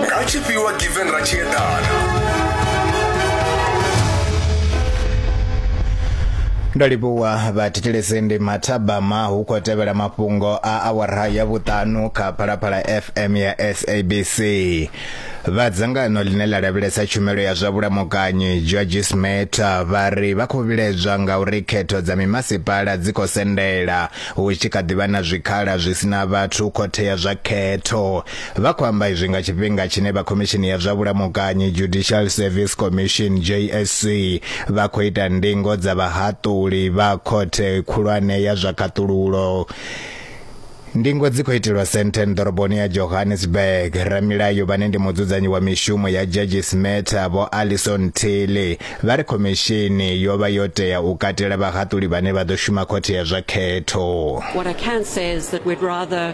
nga tshifhiwa given ra tshi eḓana ndo livhuwa vhathetshelesende mathabama hu khou tevhela mafhungo a awara ya vhuṱanu kha phalaphala fm ya sabc vha dzangano ḽine ḽa lavhelesa tshumelo ya zwa vhulamukanyi georges meta vha ri vha khou vhilaedzwa nga uri khetho dza mimasipala dzi khou sendela hu tshi kha ḓivha na zwikhala zwi sina vhathu khothea zwa khetho Vha khou amba izwi nga tshifhinga tshine vha Khomishini ya zwa Vhulamukanyi, Judicial Service Commission, JSC, vha khou ita ndingo dza vhahaṱuli vha Khothe Khulwane ya zwa Khaṱululo. Ndingo dzi khou itelwa Sandton ḓoroboni ya Johannesburg. Ramilayo vhane ndi mudzudzanyi wa mishumo ya Judges Matter Vho Alison Tilley vha ri khomishini yo vha yo tea u katela vhahaṱuli vhane vha ḓo shuma khothe ya zwa khetho. What I can say is that we'd rather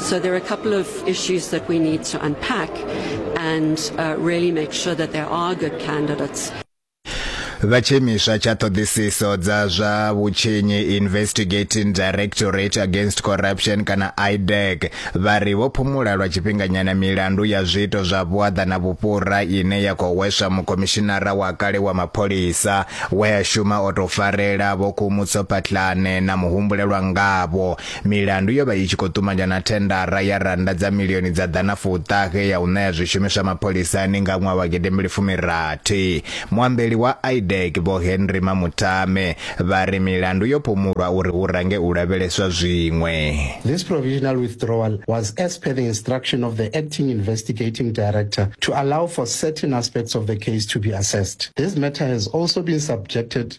So there are a couple of issues that we need to unpack and uh, really make sure that there are good candidates. vha tshiimiswa tsha ṱhoḓisiso dza zwa vhutshinyi investigating directorate against corruption kana idec vha ri vho phumula lwa tshifhinganyana milandu ya zwiito zwa vhuaḓa na vhufhura ine ya khou hweswa mukhomishinara wa kale wa mapholisa we a shuma o tou farela vho khumutso patlane na muhumbulelwa ngavho Milandu yo vha i tshi khou ṱumanya na thendara ya rannda dza milioni dza ḓana fuṱahe ya u ṋea zwishumiswa mapholisani nga ṅwaha wa gidembili fumirathi. Muambeli wa IDEC Vho Henry Mamutame vha ri milandu yo phumulwa uri hu range u lavheleswa zwiṅwe. This provisional withdrawal was as per the instruction of the acting investigating director to allow for certain aspects of the case to be assessed. This matter has also been subjected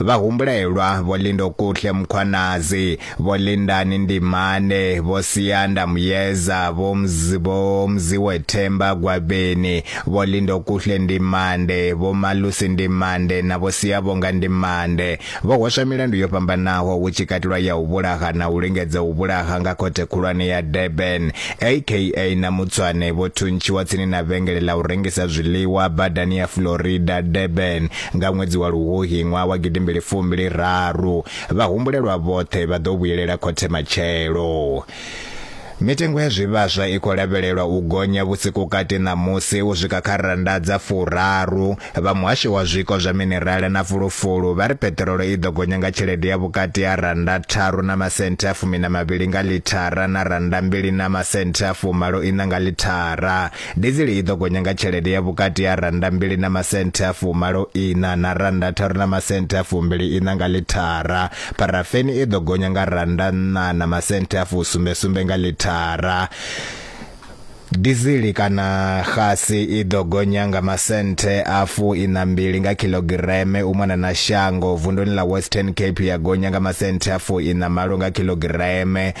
Vha humbulelwa Vho Lindokuhle Mkhwanazi, Vho Lindani Ndimane, Vho Siyanda Muyeza, Vho Mzi, Vho Mziwe Themba Gwabeni, Vho Lindokuhle Ndimande, Vho Malusi Ndimande na Vho Siyavhonga Ndimande. Vho hweswa milandu yo fhambanaho hu tshi katelwa ya u vhulaha na u lingedza u vhulaha nga Khothe Khulwane ya Durban. AKA na Mutswane vho thuntshiwa tsini na vhengele ḽa u rengisa zwiḽiwa badani ya Florida, Durban. Nga ṅwedzi wa Luhuhi ṅwaha wa gidimbili fumbili raru, vhahumbulelwa vhoṱhe vha ḓo vhuyelela khothe matshelo. Mitengo ya zwivhaswa i khou lavhelelwa u gonya vhusikukati ṋamusi u swika kha rannda dza furaru. Vha muhasho wa zwiko zwa minerala na fulufulu vha ri peṱirolo i ḓo gonya nga tshelede ya vhukati ha rannda tharu na masenthe a fumi na mavhili nga ḽithara na rannda mbili na masenthe a fumalo iṋa nga ḽithara. Dizili i ḓo gonya nga tshelede ya vhukati ha rannda mbili na masenthe a fumalo ina na rannda tharu na masenthe a fumbili ina nga lithara. Pharafeni i ḓo gonya nga rannda nṋa na masenthe a fusumbe sumbe nga lithara. Dizili kana xasi i ḓo gonya nga masenthe a fu ina mbili nga khilogireme u mona na shango vunduni ḽa Western Cape ya gonya nga masenthe a fu ina malo nga khilogireme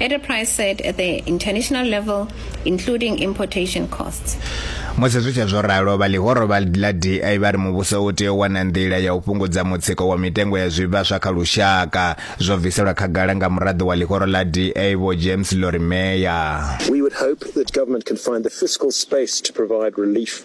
at a price set at the international level, including importation costs. musi zwi tshe zwo ralo vha ḽihoro vha ḽa di vha ri muvhuso u tea u wana nḓila ya u fhungudza mutsiko wa mitengo ya zwivhaswa kha lushaka zwo bviselwa khagala nga muraḓo wa ḽihoro ḽa da vho james lorimeya We would hope that government can find the fiscal space to provide relief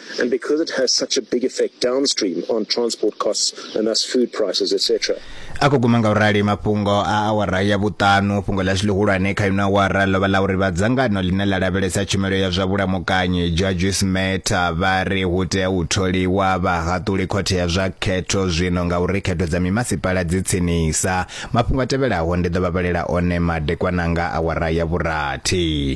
Because it has such a big effect downstream on transport costs and thus food prices, etc. a khou guma nga u rali mafhungo a awara ya vhuṱanu fhungo ḽashu ḽihulwane kha ino awara ḽo vha ḽa uri vha dzangano ḽine ḽa lavhelesa tshumelo ya zwa vhulamukanyi judges matter vha ri hu tea u tholiwa vhahaṱuli khothe ya zwa khetho zwino nga uri khetho dza mimasipala dzi tsinisa mafhungo a tevhelaho ndi ḓo vha vhalela one madekwananga awara ya vhurathi